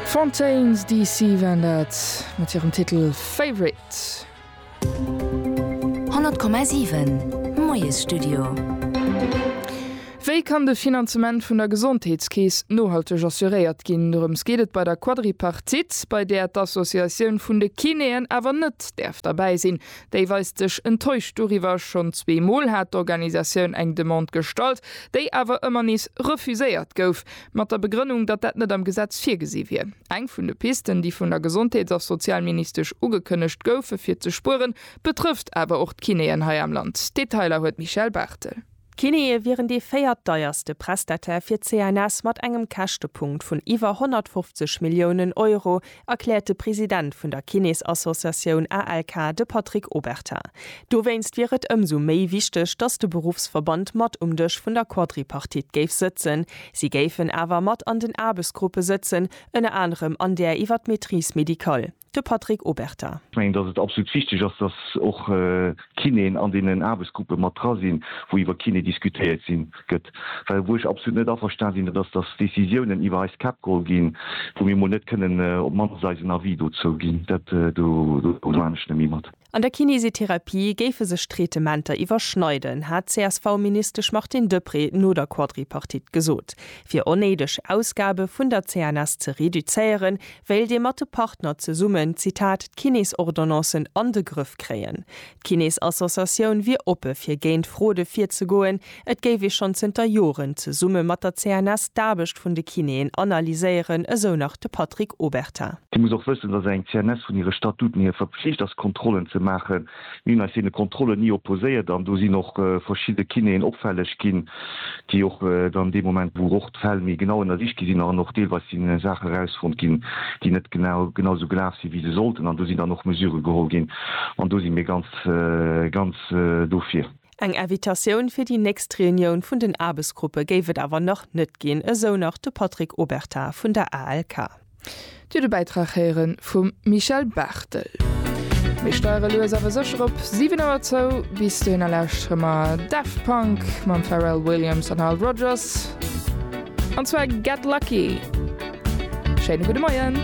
Fontaines DC waren dat mat hirem Titel Favorite. 100,7 Moiesstudio. Wéi kann de Finanzement vun der Gesondheetskeess nohalteg assuréiert ginn? Dorëms geet et bei der Quadripartite, bei där d'Associatioun vun de Kinéen awer net däerf derbäi sinn. Déi weist sech enttäuscht doriwwer. Schonn zwee Mol hat d'Organisatioun eng Demande gestallt, déi awer ëmmer nees refuséiert gouf. Mat der Begrënnung, datt dat net am Gesetz virgesi wier. Eng vun de Pisten, déi vun der Gesondheets a Sozialministesch ugekënnegt goufe fir ze spueren, betrëfft awer och d'Kinéen hei am Land. D'Detailer huet d'Michèle Barthel. D'Kinéë wieren dee véiert deierste Prestataire fir d'CNS mat engem Käschtepunkt vun iwwer 150 Milliounen Euro, erkläert de President vun der Kinesassociatioun ALK, de Patrick Obertin. Dowéinst wier et ëmsou méi wichteg, datt de Beruffsverband mat um Dësch vun der Quadripartite géif sëtzen. Si géifen awer mat an den Aarbechtsgruppe sëtzen, ënner anerem an där iwwer d'Maîtrise médicale. De Patrick Obertin. Ech mengen, datt et absolut wichteg ass, datt och Kinéen an deenen Aarbechtsgruppe mat dra sinn, wou iwwer Kiné diskutéiert sinn. gëtt. Well wou ech absolut net averstan sinn, dat ass, datt Décisiounen iwwer eis Käpp geholl ginn, wou mir emol net kënnen op d'mannst eisen Avis dozou ginn. Dat do domaen ech net méi mat. An der Kinesitherapie géife sech d'Traitementer iwwerschneiden, hat d'CSV-Ministesch Martine Deprez no der Quadripartite gesot. Fir onnéideg Ausgabe vun der CNS ze reduzéieren, wéilt ee mat de Partner zesummen, Zitat, d'Kinesordonnancen an de Grëff kréien. D'Kinnesassociatioun wier oppe fir géint Fraude virzegoen. Et géif ee schonn zënter Joren zesumme mat der CNS d'Aarbecht vun de Kinnéen analyséieren, esou nach de Patrick Obertin. Dir musst och wëssen, datt eng CNS vun hire Statuten hier verpflicht ass Kontrollen ze maachen. Mir hunn eis deene Kontrollen ni opposéiert an do sinn och verschidde Kinnéen opfälleg ginn, déi och dann dee Moment, wou d'Fäll méi genau ënnersicht gi sinn an och deelweis si Saache erausfonnt ginn, déi net genau genau esou gelaf sinn, wéi se sollten. An do sinn dann och Mesurë geholl ginn an do si mir ganz ganz dofir. Eng Invitatioun fir déi nächst Reunioun vun den Aarbechtsgruppe géif et awer nach net ginn, esou nach de Patrick Obertin vun der ALK. Dir de Bäitrag héieren vum Michel Barthel. Mir steiere lues awer sécher op 7 Auer zou. Bis dohinner lauschtere mer Daft Punk mam Pharrell Williams an Nile Rodgers, an zwar Get Lucky. Schéine gudde Moien.